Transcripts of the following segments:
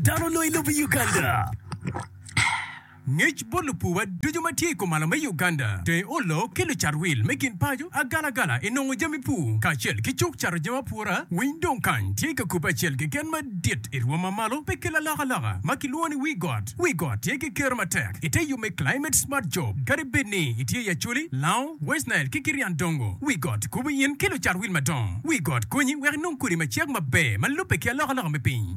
Dano onongo i lobo Uganda. Ngec bot lupuwa ducu ma tye i komalo me Uganda, dong olok ki lucat wil me gin paco agalagala i nongo jami pur kacel ki cuk cato jami apura. Winy dong kany tye ka kubbe acel keken madit i rwom ma malo pe ki lalokaloka ma kilwongo ni Wii Got. Wii Got tye ki kero matek i te yo me Climate Smart Job. Kadi bed ni itye i Acholi, Lao, West Nile ki Kirian Dongo, Wii Got kubo in ki lucat wil madongo. Wii Got konyi wek inong kodi macek maber ma lubbe ki alokaloka me piny.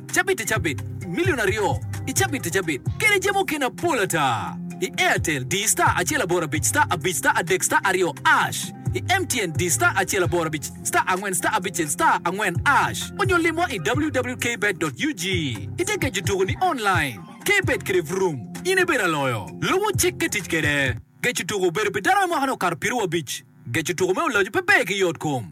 cabit i cabit, milion aryo i cabit i cabit, kede jami mukene apol ata. I Airtel, di star acel aboro abic star abic star adek star aryo ash. I MTN, di star acel aboro abic star angwen star abicel star angwen ash. Onyo limwa i www.kbet.ug. Itye keco tuko ni online. Kbet kede Vroom, in ibedo aloyo. Lubo cik ki tic kede. Geco tuko obedo pi dano me mwaka ne okato piero wiye abic. Geco tuko me oloc pe ber ki yot kom.